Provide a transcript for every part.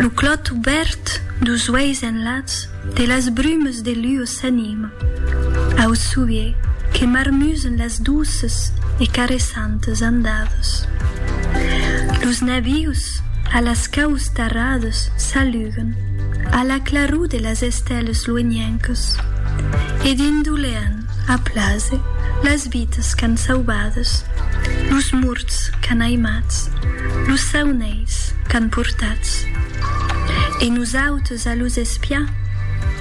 Lo clòt obèrt dus uèis enlats de las brumes de luò s'anima au sovier que marmusen las douces e caressantes andades. Los navius a las caus tarrades s'aluguen a la claror de las estèles luenhencas e dindolèan A plaser, las vitas qu'an sauvadas, los morts qu'an aimats, los saunelhs qu'an portats. E nosautes a los espiar,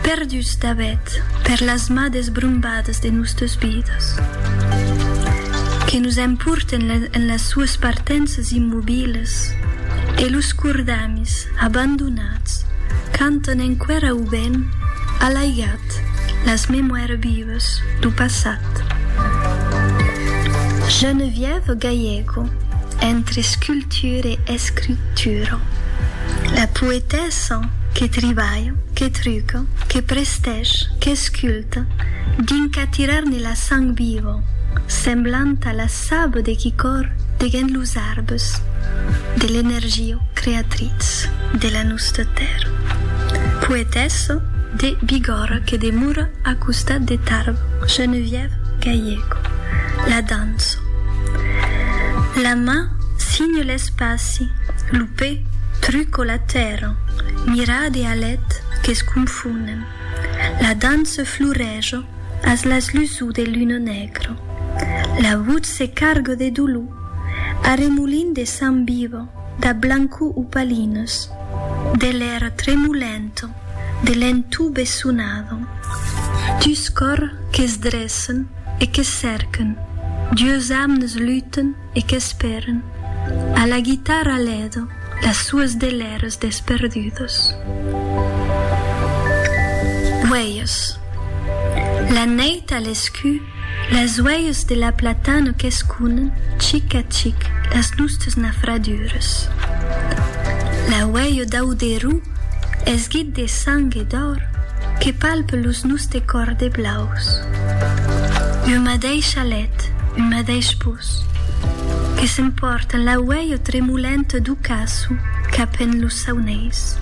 perduts dabet per las mades brombadas de nòstes vidas, que nos emporten en las suas partenças immobilas, e los cordamis abandonats cantan enqüèra au vent alaigat. las memoires vives du passat. Geneviève Gallego, entre sculpture e escritura, la poetessa que tribalha, que truca, que prestèch, qu'esculta, dins qu'atirar-ne la sang viva, semblant a la saba de qui còr degent los arbes, de l'energia creatritz de la nusta tèrra. Poetessa. de Bigòrra que demora a costat de Tarbes, Geneviève Gallego, la danço. La man signe l'espaci, lo pè truco la tèrra, mirade a lèt que s'confonen. La danço florejo as las luço de luna negro. La votz se cargo de dolor, arremolint de sang viva da blanco opalinus, de l'èra tremolenta. de l'entubesonado, dus còr que's dressen e que cèrquen, dues amnes luten e qu'espèren, a la guitarra lèdo, las sues delèras desperdudas. Uèlhs. La nèit a l'escu. Las uelhs de la platana qu'esconen chic a chic las nustas nafradures. L'auelho dau derú, esguit de sang e d'òr, que palpe los nuste còr de blaus. Ua madeisha let, un madeish pus, que s'empòrtan l'auelho tremolent dau caçu cap en los sauneis.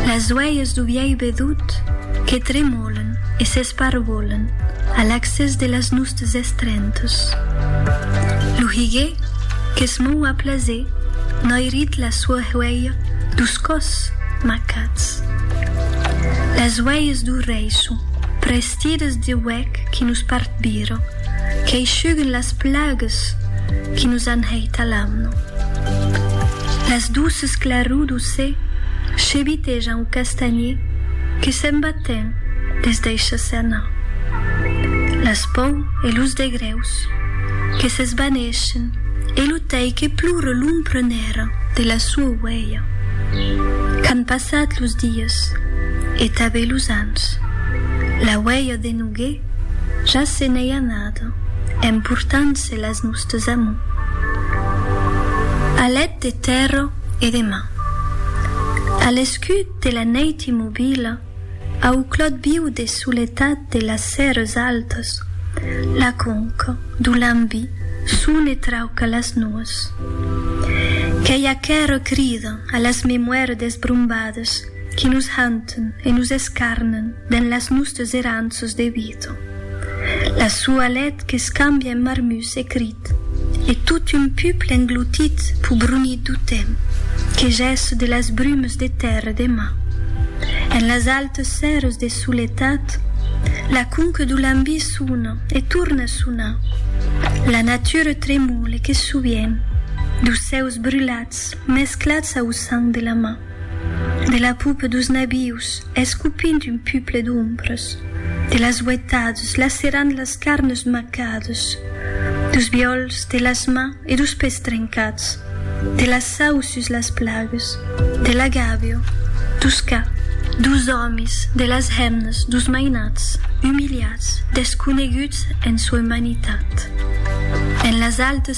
Las uelhs dau vièlh bedut que tremolan. E s'esparvolan a l'accès de las nustes estrentas. Lo higuer que's mou a plaser noirit la sua huelha dus còs macats. Las huelhas du reiço, prestidas de huec qui nos partbira, qu'aishuguen las plagas qui nos an hèit a l'amna. Las duces clarudos se chebitejan au castanhier que se'n va Matin, es deisha se anar. Las pòu e los degrèus que s'esvanèschen e lo tei que plora l'ompra nèra de la soa uelha. Qu'an passat los dies e tabé los ans. La uelha de Nogué ja se n'ei anada emportant-se las nòstes amor. Alet de tèrra e de mar. A l'escut de la neit immobila, au clòt viu de soletat de las sèrres altas, la conca d'o Lambi son e trauca las nuas. Qu'ei aquera crida a las memoires desbrombades qui nos hanten e nos escarnen. Dens las nustes erant sus de huito. La sua lèt qu'escambia en marmus e crit. E tot un puple engloutit pus brunit dau temps que gèsse de las brumes de tèrre de mar. En las altes sèrres de soletat, la conque dau lambí sona e torna sonar. La natura tremole que sovient dau sèus brulats mesclats au sang de la mar. De la poupe dos nabius escopint un puple d'ombres, de las uetades lacerant las carnes macades, dos viòls de las mans e dos pès trencats, de la sau sus las plagues, de la gàbio, dos cas, dos òmis, de las hemnas, dos mainats, umiliats, desconeguts en sua umanitat, en las altes